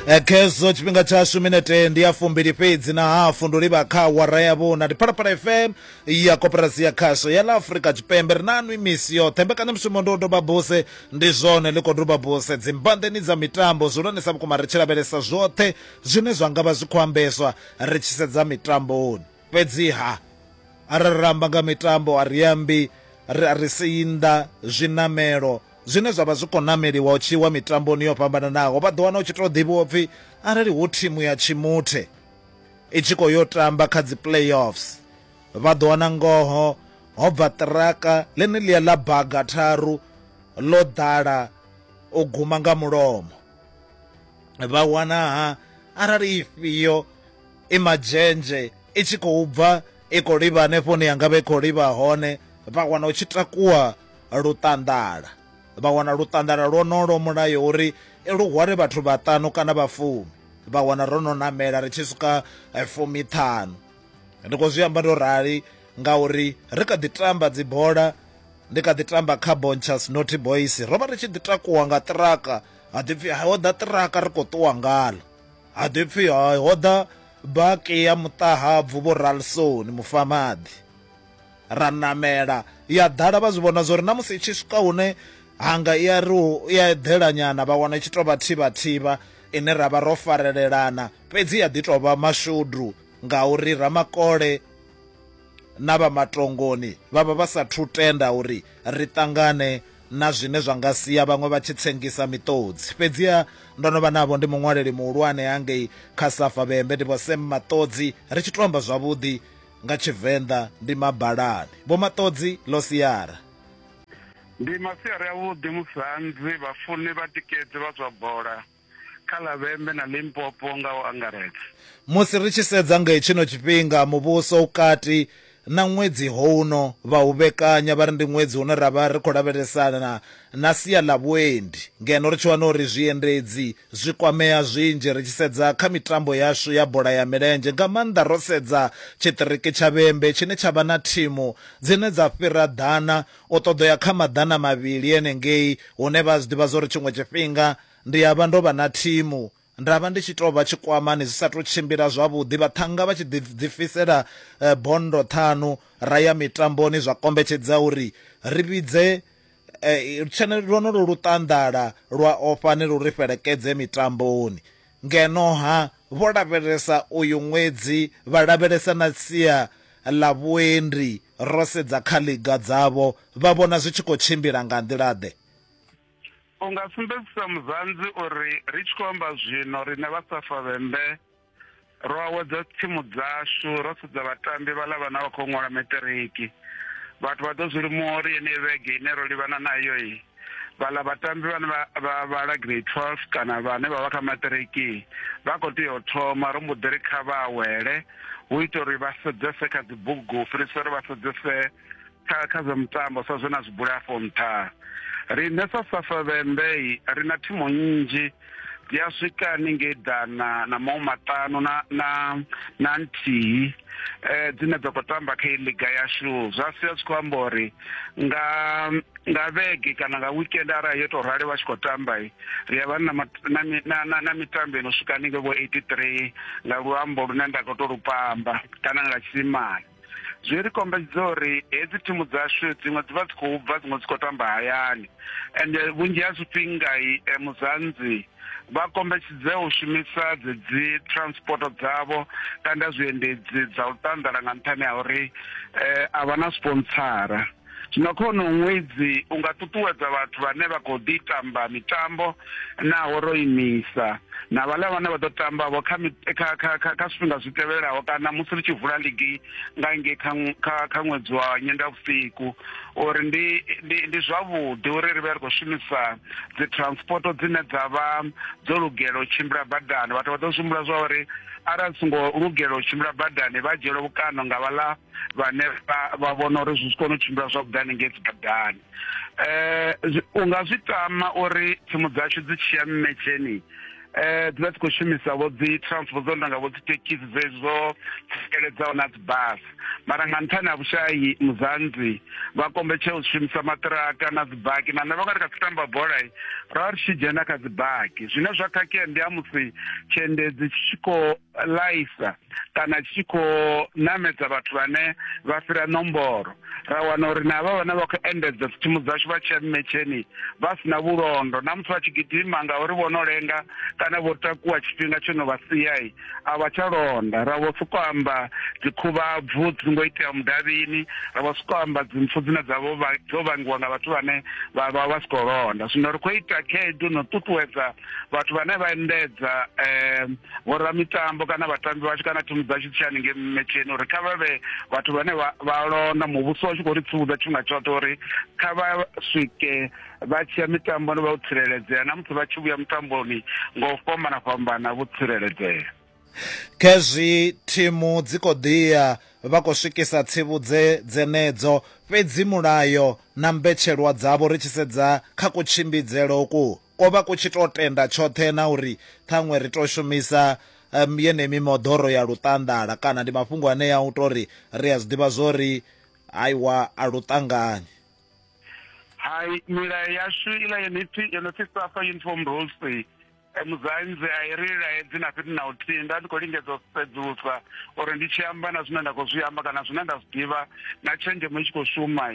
Eh, khezwo tshifhinga tshashu minete ndi ya fumbili fhedzi na hafu ndo livha kha wara ya vhuna ndi phalaphala fm ya koperasi ya khasho ya la afurika tshipembe ri na nwi misi yoṱhe mbekanyamushumo ndo doba buse ndi zwone ḽi khou doba buse dzimbandeni dza mitambo zwihulwanesa vhukuma ri tshi lavhelesa zwoṱhe zwine zwa nga vha zwi khou ambeswa ri tshi sedza mitamboni Fhedziha arali ra amba nga mitambo a ri ambi a ri sei nnḓa zwiṋamelo zwine zwa vha zwi khou ṋameliwa u tshi wa mitamboni yo fhambananaho. Vha ḓo wana u tshi tou ḓivhiwa upfhi arali hu thimu ya Tshimuthe i tshi khou yo tamba kha dzi playoffs vha ḓo wana ngoho ho bva ṱiraka ḽeneḽia ḽa baga tharu ḽo ḓala u guma nga mulomo vha wanaha arali ifhio i madzhenzhe i tshi khou bva i khou livha hanefho hune yanga vha i khou livha hone vha wana u tshi takuwa luṱanḓala vha wana luṱanḓala lwonolo mulayo uri lu hwale vhathu vhaṱanu kana vha fumi vha wana ro no namela ri tshi swika eh, fumi ṱhanu ndi khou zwi amba ndo rali ngauri ri kha ḓi tamba dzibola ndi kha ḓi tamba kha bonchas noty boys ro vha ri tshi ḓi takuwa nga ṱiraka ha ḓipfi ho ḓa ṱiraka ri khou ṱuwa ngalo Ha ḓi pfi ha ho ḓa baki ya muṱahabvu vho Ralsoni mufamaḓi. Ra namela ya ḓala vha zwi vhona zwa uri na musi i tshi swika hune hanga i a ri i a eḓela nyana vha wana i tshi tou vha thivha thivha ine ra vha ro farelelana fhedzi ya ḓi tou vha mashudu ngauri Ramakole na vha matongoni vha vha vha sa thu tenda uri ri ṱangane na zwine zwa nga sia vhaṅwe vha tshi tsengisa miṱodzi. Fhedziha ndo no vha navho ndi muṅwaleli muhulwane hangei kha Safa Vhembe ndi Vho Sam Maṱodzi, ri tshi tou amba zwavhuḓi nga Tshivenḓa ndi mabalani. Vho Maṱodzi, Ḽo siara. Ndi masiari avhuḓi musi hanzi vhafuni vha tikedzi vha zwa bola. kha ḽa Vhembe na Limpopo nga u angaredza. Musi ri tshi sedza nga hetshino tshifhinga, muvhuso u kati na ṅwedzi houno vha u vhekanya vha ri ndi ṅwedzi une ra vha ri khou lavhelesana na sia ḽa vhuendi ngeno ri tshi wana uri zwiendedzi zwi kwamea zwinzhi ri tshi sedza kha mitambo yashu ya bola ya milenzhe nga maanḓa ro sedza tshiṱiriki tsha Vhembe tshine tsha vha na thimu dzine dza fhira ḓana u ṱoḓo ya kha maḓana mavhili enengei hune vha zwi ḓivha zwa uri tshiṅwe tshifhinga Ndi ya vha ndo vha na thimu, nda vha ndi tshi tou vha tshikwamani zwi sa tou tshimbila zwavhuḓi, vhaṱhannga vha tshi ḓifisela bondo ṱhanu ra ya mitamboni zwa kombetshedza uri ri vhidze lwonolwo luṱanḓala lwa Ofhani lu ri fhelekedze mitamboni. Ngeno-ha, vho lavhelesa uyu ṅwedzi vha lavhelesa na sia ḽa vhuendi, ro sedza kha ḽiga dzavho vha vhona zwi tshi khou tshimbila nga nḓila-ḓe? u nga sumbedzisa muzanzi uri ri tshi khou amba zwino riṋe vha safa vhembe ro awedza tsimu dzashu ro sedza vhatambi vhaḽa vhana vha khou ṅwala meṱiriki vhathu vha ḓo zwi limuwa uri yeneyi vhege ine ro livhana nayo i vhaḽa vhatambi vhane vha vhala grade twelve kana vhane vha vha kha maṱiriki vha khou tea u thoma ro mbo ḓi ri kha vha awele hu ita uri vha sedzese kha dzibugu u fhirisa uri vha sedzese kha kha zwa mitambo sa zwe na zwi bula afho nṱha riṋe sa safa vhembe ri na thimu nnzhi dzi a swika haningei dana na maṅwe maṱanu na na na nthihi um dzine dza khou tamba kha i liga yashu zwa sia zwi khou amba uri nga nga vhege kana nga weekend arali yo tou rali vha tshi khou tamba ri a vha na mitambo ino swika haningei vho eighty three nga luambo lune nda khou tou lu pamba kana nga tshisimane zwi ri kombedza uri hedzi thimu dzashu dziṅwe dzi vha dzi khou bva dziṅwe dzi khou tamba hayani ende vhunzhi ha zwifhinga eh, muzanzi vha kombetshedze u shumisa dzedzi transport dzavho kana zwiendedzi dza u ṱanḓela nga nṱhani ha uri eh, a vha na sponsara Zwino khono ṅwedzi u nga ṱuṱuwedza vhathu vhane vha khou ḓi tamba mitambo naho ro imisa na vhaḽa vhane vha ḓo tamba vho kha kha kha kha kha zwifhinga zwi tevhelaho kana musi ri tshi vula ligi nga ngei kha kha kha ṅwedzi wa nyendavhusiku uri ndi ndi ndi zwavhuḓi uri ri vhe ri khou shumisa dzi transport dzine dza vha dzo lugela u tshimbila badani vhathu vha ḓo zwi humbula zwa uri arali songo lugela u tshimbila badani vha dzhielwa vhukando nga vhaḽa vhane vha vhona uri zwi si kone u tshimbila zwavhuḓi hanengei dzibadani um u nga zwi tama uri tsimu dzashu dzi tshiya mmetsheni eh dzi vha dzi khou shumisa vho dzi transport dzo ndanga vho dzi tekisi zwezo tsikeledzaho na dzi bus mara nga nṱhani ha vhushayi muzanzi vha kombetshe u shumisa maṱiraka na dzi baki na nṋe vha nga ri kha dzi tamba bola ra ri tshi dzhena kha dzi baki zwine zwa khakhea ndi ha musi tshiendedzi tshi tshi khou laisa kana tshi tshi khou ṋamedza vhathu vhane vha fhira nomboro ra wana uri na havha vhane vha khou endedza dzitsimu dzashu vha tshiya mmetsheni vha si na vhulondo na muthu vha tshi gidima ngauri vho no lenga kana vho takuwa tshifhinga tsho no vha siyai a vha tsha londa ra vho sokou amba dzikhuvhabvu dzi ngo itea mudavhini ra vho sokou amba dzimpfu dzine dza vho dzo vhangiwa nga vhathu vhane vha vha vha si khou londa zwino ri khou ita khaedu no ṱuṱuwedza vhathu vhane vha endedza um vhoramitambo kana vhatambi vhashu kana thimu dzashu tshi haningei mmetsheni uri kha vha vhe vhathu vhane vha lona muvhuso wa tshi khou ri tsivhudza tshifhinga tshoṱhe uri kha vha swike vha tshiya mitamboni vha u tsireledzea na musi vha tshi vhuya mitamboni ngo fhambana fhambana vho tsireledzea khezwi thimu dzi khou ḓiya vha khou swikisa tsivhudze dzenedzo fhedzi mulayo na mbetshelwa dzavho ri tshi sedza kha kutshimbidzele uku Ko vha ku tshi tou tenda tshoṱhe na uri ṱhaṅwe ri tou shumisa yeneyi mimoḓoro ya luṱanḓala kana ndi mafhungo anea a u tou ri ri a zwi ḓivha zwo ri haiwa a lu ṱangani. Hai, milayo yashu iḽa yo no pfi yo no pfi SAFA Uniform Rules Muzanzi a i ri laedzi na fhethu na huthihi. Nda ndi khou lingedza u sedzulusa uri ndi tshi amba na zwine nda khou zwi amba kana zwine nda zwi ḓivha na tshenzhemo i tshi khou shuma.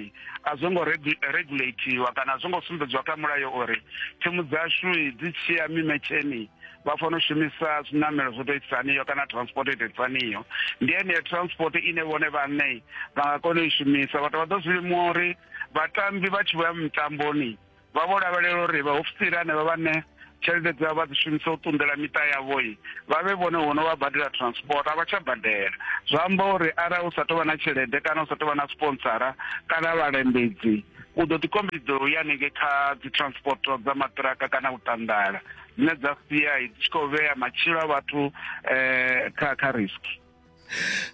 a zwo ngo regulatiwa kana a zwo ngo sumbedziwa kha mulayo uri thimu dzashu dzi tshiya mimetsheni vha fanela u shumisa zwiṋamelo zwo to itisaniyo kana transport ito itisaniyo ndi eneyo transport ine vhone vhaṋe vha nga kona u i shumisa vhathu vha ḓo zwi limuwa uri vhatambi vha tshi vho ya mitamboni vha vho lavhelela uri vhaofisiri hanevha vhane tshelede dzavho vha dzi shumisa u ṱunḓela miṱa yavhoi vha vhe vhone vho no vha badela transport a vha tsha badela zwa amba uri arali u sa tou vha na tshelede kana u sa tou vha na sponsora kana vhalembedzi u ḓo ḓi kombetshedzela u ya hanengei kha dzi transport dza maṱiraka kana u ṱanḓala dzine dza sia dzi tshi khou vhea matshilo a vhathu um kha kha risk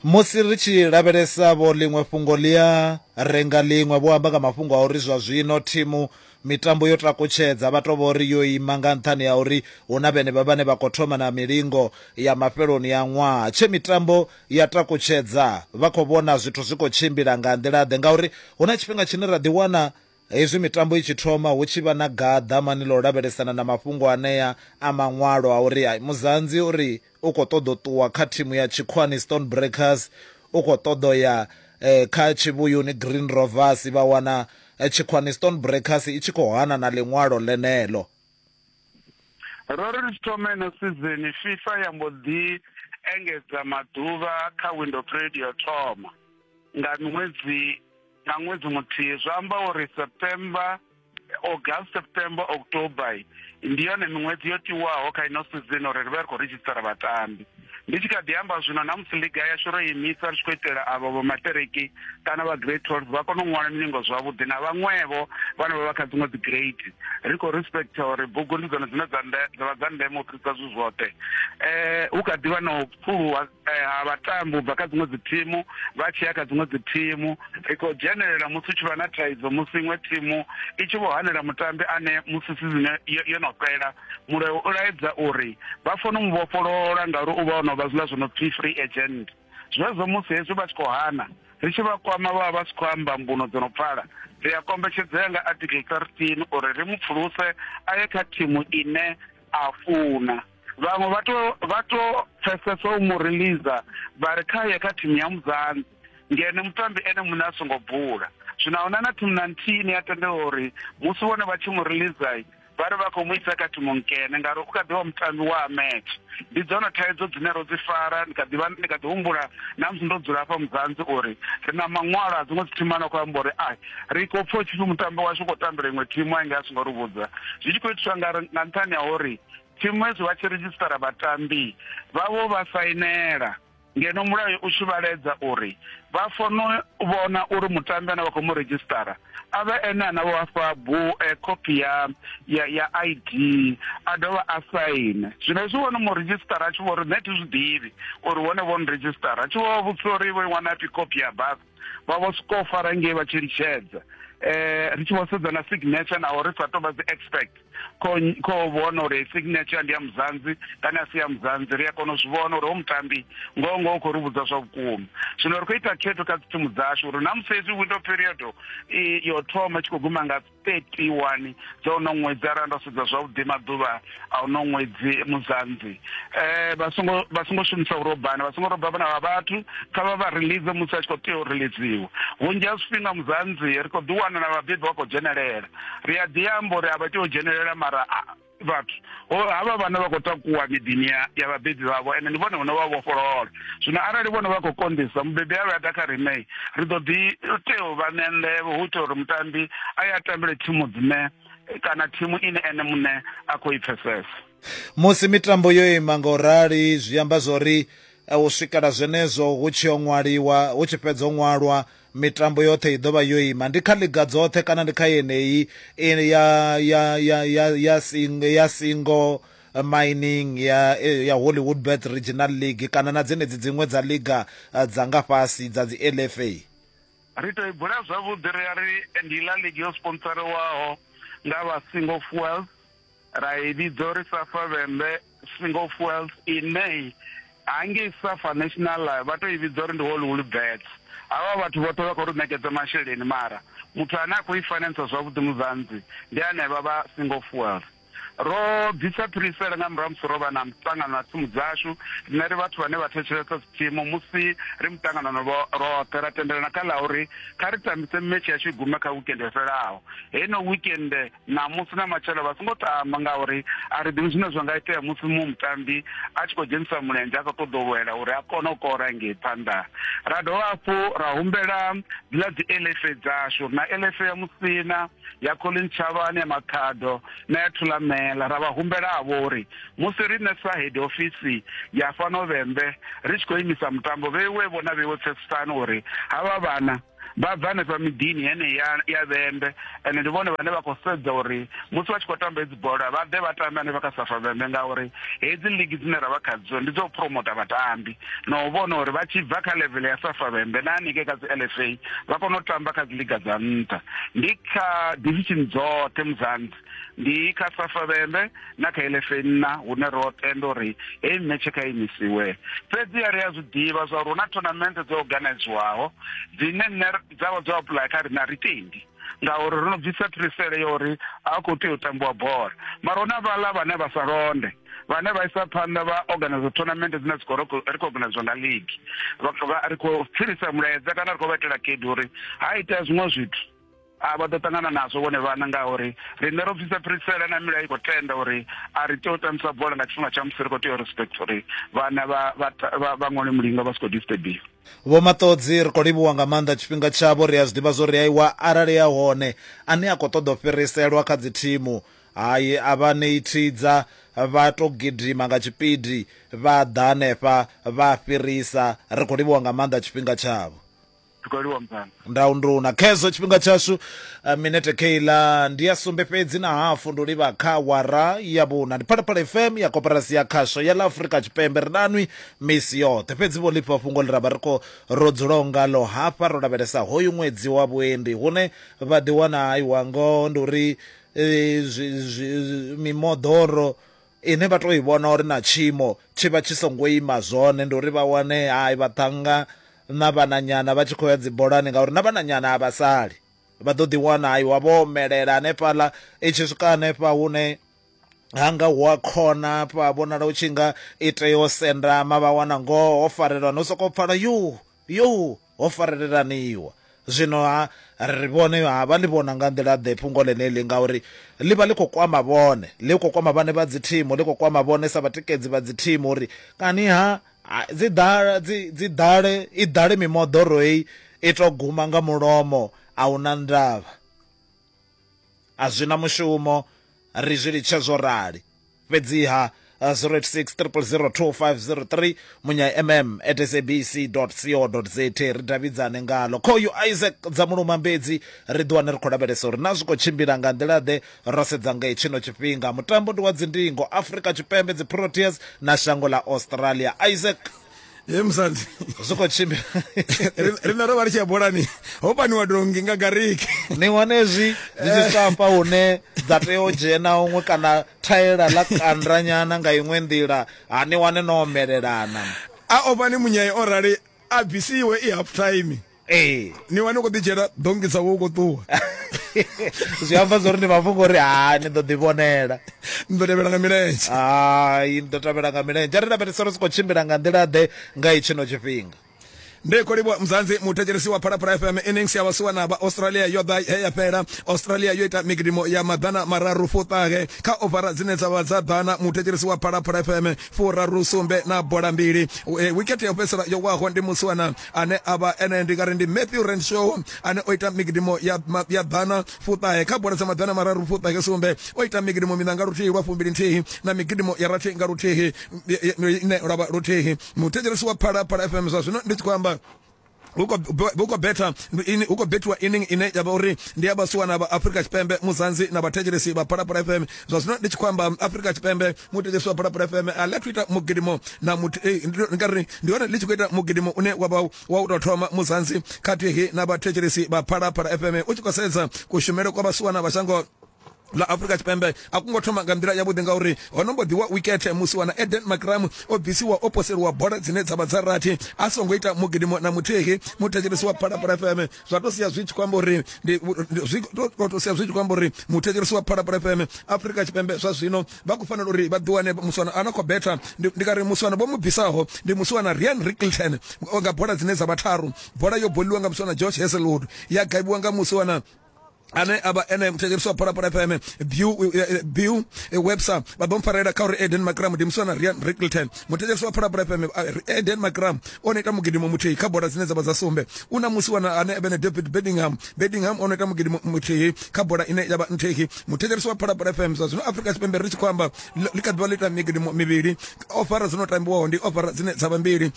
musi ri tshi lavhelesa vho ḽiṅwe fhungo ḽi a renga ḽiṅwe vho amba nga mafhungo a uri zwa zwino thimu mitambo yo takutshedza vha tou vha uri yo ima nga nṱhani ha uri hu na vhenevha vhane vha khou thoma na milingo ya mafheloni ya ṅwaha tshe mitambo ya takutshedza vha khou vhona zwithu zwi khou tshimbila nga nḓila-ḓe ngauri hu na tshifhinga tshine ra ḓiwana Hezwi mitambo i tshi thoma, hu tshi vha na gaḓamani ḽa u lavhelesana na mafhungo anea a maṅwalo a uri ai Muzanzi u ri u khou ṱoḓa u ṱuwa kha thimu ya tshikhuwani Stonebreakers, u khou ṱoḓa u ya kha tshivhuyuni Green Rovers, vha wana tshikhuwani Stonebreakers i tshi khou hana na ḽiṅwalo ḽeneḽo. Ro ri ri tshi thoma ino sizeni, FIFA ya mbo ḓi engedza maḓuvha kha window period ya u thoma nga miṅwedzi. nga ṅwedzi muthihi zwi amba uri september august september october ndi yone miṅwedzi yo tiwaho kha ino sizini uri ri vha ri khou redzhisitara vhatambi ndi tshi kha ḓi amba zwino na musi liga yashu ro imisa ri tshi khou itela avho vho maṱereki kana vha grade twelve vha kone u ṅwala milingo zwavhuḓi na vhaṅwevho vhane vha vha kha dziṅwe dzi grade ri khou respecta uri bugu ndi dzone dzine dza vha dza ndeme u fhirisa zwithu zwoṱhe um hu kha ḓi vha na u pfuluwa Eh, ha vhatambi u bva kha dziṅwe dzithimu vha tshi ya kha dziṅwe dzithimu ri khou dzhenelela musi u tshi vha na thaidzo musi iṅwe thimu i tshi vho hanela mutambi ane musi sizine yo no fhela mulayo u laedza uri vha funa u mu vhofholola ngauri u vha o no vha zwiḽa zwo no pfhi free agent zwezwo musi hezwi vha tshi khou hana ri tshi vha kwama vha vha si khou amba mbuno dzo no pfala ri a kombetshedzea nga article 13 uri ri mu pfuluse a ye kha thimu ine a funa vhaṅwe vha to vha to pfesesa u mu releaser vha ri kha ye kha thimu ya muzanzi ngene mutambi ene muṋe a songo bula zwino ahuna na thimu na nthihi ni a tendela uri musi vhone vha tshi mu releaser vha ri vha khou mu isa kha thimu nkene ngauri u kha ḓivha mutambi wa match ndi dzone thaidzo dzine ro dzi fara ndi kha ḓivha ndi kha ḓi humbula na musi ndo dzula hafha muzanzi uri ri na maṅwalo a dziṅwe dzithimana khou amba uri ai ri khou pfha u tshipfi mutambi washu u khou tambela iṅwe thimu a nge a songo ri vhudza zwi tshi khou itiswa nga nṱhani ha uri Tshiṅwezwi vha tshi ridzhisiṱara vhatambi vhavho vha sainela ngeno mulayo u tshi vhaledza uri vha fono vhona uri mutambi ane vha khou mu ridzhisiṱara a vhe ene ane vha fha bu eh, khophi ya ya ya ID a dovha a saine zwino hezwi vhono mu ridzhisiṱara a tshi vho ri nṋe thi zwi ḓivhi uri vhone vho ni ridzhisiṱara a tshi vho vha vhudzisa uri vho i wana phi khophi ya basa vha vho sokou fara ngei vha tshi litshedza eh ri tshi vho sedza na signature naho ri sa tou vha dzi expect kho vhona uri signature ndi ya muzanzi kana si ya muzanzi ri a kona u zwi vhona uri ho mutambi ngoho ngoho khou ri vhudza zwa vhukuma zwino ri khou ita khetho kha dzi thimu dzashu uri na musi hezwi window period yo thoma tshi khou guma nga 31 dza uno ṅwedzi arali ndo sedza zwavhuḓi maḓuvha a uno ṅwedzi muzanzi eh vha songo vha songo shumisa urobana vha songo roba vhana vha vhathu kha vha vha release musi a tshi khou tea u releasewa vhunzhi ha zwifhinga muzanzi ri khou ḓiwana na vhabebi vha khou dzhenelela ri a ḓi amba uri a vha tea u dzhenelela mara vhathu havha vhana vha khou takuwa miḓini ya vhabebi vhavho ende ndi vhone vhone vha vhofholola zwino arali vhone vha khou konḓisa mubebi a vha ya ḓa kha riṋe ri ḓo ḓi tea u vha ṋea nḓevho hu itela uri mutambi a ye a tambele thimu dzine kana thimu ine ene muṋe a khou i pfesesa musi mitambo yo ima nga u rali zwi amba zwori u swikela zwenezwo hu tshi yo ṅwaliwa hu tshi fhedza u ṅwalwa Mitambo yoṱhe i ḓo vha yo ima, ndi kha ḽiga dzoṱhe kana ndi kha yeneyi ya ya ya ya ya singo ya singo mining ya ya Hollywood Bet Regional League kana na dzenedzi dziṅwe dza liga eh, dza nga fhasi dza dzi LFA. Ri tou i bula zwavhuḓi ri ya ri ndi La Liga yo sponsorewaho nga vha Singo Fuels. Ra i vhidza uri Safa Vhembe Single Fuels ine hangei Safa National Live vha tou i vhidza uri ndi Hollywood Bets. Havha vhathu vhoṱhe vha khou ri ṋekedza masheleni mara muthu ane a khou i finansa zwavhuḓi Mudzanzi ndi hanevha vha Single Fuels. Ro bvisa phirisela nga murahu musi ro vha na muṱangano na thimu dzashu rine ri vhathu vhane vha thetshelesa dzithimu musi ri muṱanganano roṱhe ra tendelana kha ḽa uri kha ri tambise metshe yashu i gume kha wikende yo fhelaho heino wikende ṋamusi na matshelo vha songo tamba ngauri a ri ḓivhi zwine zwa nga itea musi muṅwe mutambi a tshi khou dzhenisa mulenzhe a khou ṱoḓa u lwela uri a kone u kora ngei phanḓa ra dovha hafhu ra humbela dziḽa dzi elefe dzashu na elefe ya musina ya colin tshavhani ya makhado na ya thulamela ra vha humbela havho uri musi riṋe sa head ofisi ya fhano vhembe ri tshi khou imisa mutambo vheiwe vhona vheiwe pfesesani uri havha vhana vha bva hanefha miḓini heneyi ya ya vhembe ende ndi vhone vhane vha khou sedza uri musi vha tshi khou tamba hedzi bola vha ḓe vha tambe hanefha kha safa vhembe ngauri hedzi ligi dzine ra vha khadzo ndi dzo promota vhatambi na u vhona uri vha tshi bva kha level ya safa vhembe na hanike kha dzi l f a vha kone u tamba kha dzi liga dza nṱha ndi kha division dzoṱhe muzanzi ndi kha safa vhembe na kha elefe nna hune ro tenda uri heyi metshe kha imisiwe fhedzi a ri a zwi ḓivha zwa uri hu na thonamente dzo organiziwaho dzine nne dza vha dzo apulaya kha rine a ri tendi ngauri ro no bvisa phirisele ya uri a khou tea u tambiwa bola mara huna vhaḽa vhane vha sa londe vhane vha isa phanḓa vha organize tournament dzine dzi khou recogniziwa nga league ri khou fhirisa mulaedza kana ri khou vha itela khedu uri ha itea zwiṅwe zwithu a vha ḓo ṱangana nazwo vhone vhana ngauri riṋe ro bvisa phirisela na milayo i khou tenda uri a ri tea u tambisa bola nga tshifhinga tsha musi ri khou tea u respect uri vhana vha ṅwale mulinga vha si khou disturbiwa vho maṱodzi ri khou livhuwa nga maanḓa tshifhinga tshavho ri a zwi ḓivha zwo ri aiwa arali ya hone ane a khou ṱoḓa u fhiriselwa kha dzi thimu hayi a vha ṋei thidza vha to gidima nga tshipidi vha ḓa hanefha vha fhirisa ri khou livhuwa nga maanḓa tshifhinga tshavho Tukaliwa mzansi. ndau nduna khezwo tshifhinga tshashu uh, minete keiḽa ndi ya sumbe fhedzi na hafu ndo livha kha wara ya vhuna ndi phalaphala fm ya koporasi ya khasho ya ḽa afurika tshipembe ri nanwi misi yoṱhe fhedzi vho lifha fhungo ḽi ra vha ri khou ro dzulaho ngalo hafha ro lavhelesa hoyu ṅwedzi wa vhuendi hune vha ḓiwana aiwa ngoho ndi uri eh, zwi- zwi- mimoḓoro ine vha tou i vhona uri na tshiimo tshi vha tshi songo ima zwone, ndi uri vha wane hai vhaṱhannga na vhananyana vha tshi khou ya dzibolani ngauri na vhananyana a vha sali. Vha ḓo ḓiwana hai wa vho omelela hanefhaḽa, i tshi swika hanefha hune hanga hu a khona hafha vhonala u tshi nga i tea u sendama vha wana ngoho ho farelwa no sokou pfala yo Yoo! Ho farelelaniwa! Zwino-ha, ri ri vhone, ha vha ḽi vhona nga nḓila-ḓe fhungo ḽeneḽi? Ngauri ḽi vha ḽi khou kwama vhone. Ḽi khou kwama vhaṋe vha dzithimu, ḽi khou kwama vhone sa vhatikedzi vha dzithimu uri, Kani-ha, dzi ḓale, dzi, dzi ḓale, i ḓale mimoḓoro hei, i tou guma nga mulomo, a hu na ndavha. a zwi na mushumo ri zwi litshe zwo rali fhedziha 0863002503 munya mm at sabc co za ri davhidzane ngalo khoyu isaac dza muluma mbedzi ri ḓiwane ri khou lavhelesa uri na zwi khou tshimbila nga nḓila ḓe ro sedza ngei tshino tshifhinga mutambo ndi wa dzindingo afrika tshipembe dzi proteas na shango ḽa australia isaac ye musadzi zwi khou tshimbila Ri- riṋe ro vha ri tshi ya bolani ho paniwa dongi nga gariki ni wana hezwi zwi tshi swika hafha hune dza tea u dzhena huṅwe kana thaela ḽa kandranyana nga iṅwe nḓila ha ni wane no omelelana a ofha ni munyaye o rali a bvisiwe i half time ee ni wane u khou ḓi dzhiela dongisa wo u khou ṱuwa zwi amba zwo ri ni vha funga uri ha ni ḓo ḓi vhonela ni ḓo tevhela nga milenzhe hai ni ḓo tevhela nga milenzhe a ri lavhelesa ri si khou tshimbila nga nḓila ḓe nga itshino tshifhinga ndi khou livhuwa muzanzi muthetshelesi wa phalaphala fm innings ya vhasiwa na vha australia yo ḓa he ya fhela australia yo ita migidimo ya maḓana mararu fuṱahe kha ovara dzine dza vha dza ḓana muthetshelesi wa phalaphala fm furaru sumbe na bola mbili wikete ya u fhedzisela yo waho ndi musiwana ane a vha ene ndi nga ri ndi Matthew Renshaw ane o ita migidimo ya ya ḓana fuṱahe kha bola dza maḓana mararu fuṱahe sumbe o ita migidimo mina nga luthihi lwa fumbili nthihi na migidimo ya rathi nga luthihi ine lwa luthihi muthetshelesi wa phala phala FM zwa zwino ndi tshi khou amba hu khou betha hu khou bethiwa inning ine ya vha uri ndi ya vhasiwana vha afrika tshipembe muzanzi na vhathetshelesi vha phalaphala fm zwa zwino ndi tshi khou amba afrika tshipembe muthetshelesi wa phalaphala fm a ḽi athu ita mugidimo na muthu ei ndi ndi nga ri ndi hone ḽi tshi khou ita mugidimo une wa vha wa u tou thoma muzansi khathihi na vhathetshelesi vha phalaphala fm u tshi khou sedza kushumele kwa vhasiwana vha shango ḽa afurika tshipembe a kungo thoma nga nḓila yavhuḓi ngauri ho no mbo ḓiwa wikethe musi wana eden macram o bvisiwa o poseliwa bola dzine dza vha dza rathi a songo ita mugidimo na muthihi muthetshelesi wa phalaphala fm zwa to sia zwi tshi khou amba uri ndi zwi to to sia zwi tshi khou amba uri muthetshelesi wa phalaphala fm afrika tshipembe zwa zwino vha khou fanela uri vha ḓiwane muswana a no khou betha ndi ndi nga ri muswana vho mu bvisaho ndi muswana rian rickelton nga bola dzine dza vha tharu bola yo boliwa nga muswana george heselwood ya gaibiwa nga muswana ane avha ene muthetshelisi wa phalaphala fm bill eh, eh, eh, webster vha ḓo mpfarela kha uri eden macram ndi muswa na rian rickelton muthetshelisi wa phalaphala fm eden macram o no ita mugidimo muthihi kha bola dzine dza vha dza sumbe u na musi wana ane avha ne david bedingham bedingham o no ita mugidimo muthihi kha bola ine ya vha nthihi muthetshelisi wa phalaphala fm zwa zwino afrika tshipembe ri tshi khou amba ḽi kha ḓivha ḽi ita migidimo mivhili ofara dzo no tambiwaho ndi ofara dzine dza vha mbili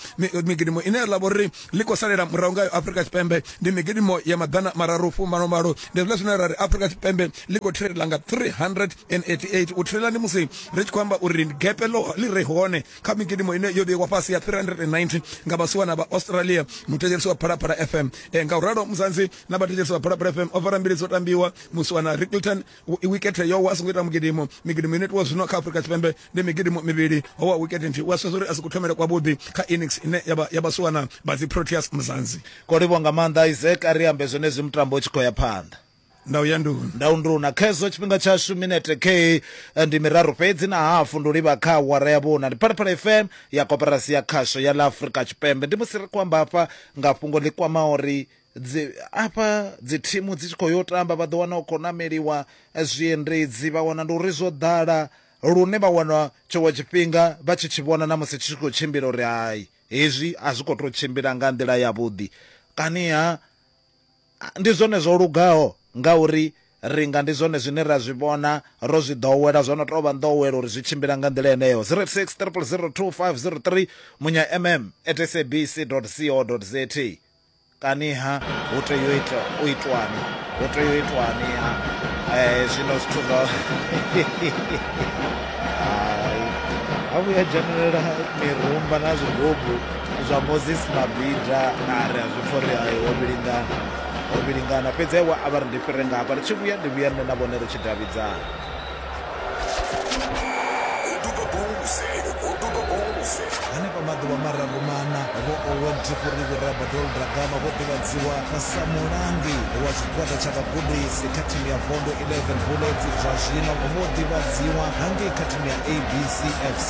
migidimo ine ya ḽa vho ri ḽi khou salela murahu ngayo afurika tshipembe ndi migidimo ya maḓana mararu fumano malo ndi zwiḽa zwine ra ri afurika tshipembe ḽi khou thirela nga 388 u thirela ndi musi ri tshi khou amba uri gepe ḽi re hone kha migidimo ine yo vheiwa fhasi ya 390 nga vhasiwana vha australia muthetshelisi wa phalaphala fm e, nga u ralo muzanzi na vhathetshelisi vha phalaphala fm o fara mbili dzo tambiwa musiwana ricleton wikethe yowa a songo ita mugidimo migidimo ine itiwa zwino kha afurika tshipembe ndi migidimo mivhili ho wa wikete nthihi u a sedza uri a si kuthomele kwavhuḓi kha innings ine ya vhasiwana vha dzi proteas muzanzi ko livhwa nga maanḓa isaac a ri ambe zwenezwi mutambo u tshi khou ya phanḓa ndau ya nduna ndau nduna khezwo tshifhinga tshashu minete k eh, ndi miraru fhedzi na hafu ndi livha kha awara ya vhuna ndi phalaphala fm ya koperasi ya khasho ya ḽa afurika tshipembe ndi musi ri khou amba hafha nga fhungo ḽi kwama uri dzi afha dzi thimu dzi tshi khou yo tamba vha ḓo wana u khou nameliwa eh, zwiendedzi vha wana ndi uri zwo ḓala lune vha wana tshiṅwe tshifhinga vha tshi tshi vhona na musi tshi tshi khou tshimbila uri hai hezwi a zwi khou tou tshimbila nga nḓila yavhuḓi kaniha ndi zwone zwo lugaho ngauri ri nga ndi zwone zwine ra zwi vhona ro zwi ḓowela zwo no tou vha nḓowelo uri zwi tshimbila nga nḓila yeneyo 06 triple 02503 munya mm at sabc co za Kaniha hu tea u ita u itwani hu tea u itwani ha eh, zwino zwithu zwa ha vhuya dzhenelela mirumba na zwigobu zwa moses mabida na ri a zwi pfha uri ayo ho vhilingana ho vhilingana fhedzi aiwa a vha ri ndi fhire ngafha ri tshi vhuya ndi vhuya nṋe na vhone ri tshi davhidzana henefha maḓuvha mararu mana vho owen tshifuriku rabadol dragama vho ḓivhadziwa sa mulangi wa tshigwada tsha vhagudisi kha thimu ya vondo 11 bullets zwa zwino vho ḓivhadziwa hangei kha thimu ya abc fc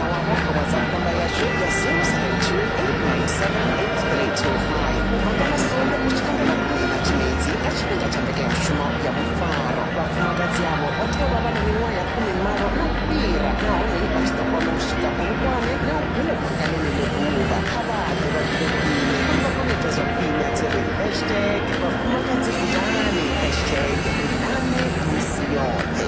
Awamo kha WhatsApp namba yashu ya 0682897825 manga masongo u tshi kangana vhukuma na tshimedzi kha tshifhinga tsha mbekanyamushumo ya vhufaro vhafumakadzi avho vha tea u vha vha na miṅwaha ya fumimalo na u fhira nahone vha tshi ḓo kona u swika bulukwani na u gungubanga ḽeneḽo ḓuvha kha vha ḓe vha gude khwine uri vha kone u ita zwa khwine a dzi ri hashtag vhafumakadzi gudani hashtag ri nane misi yoṱhe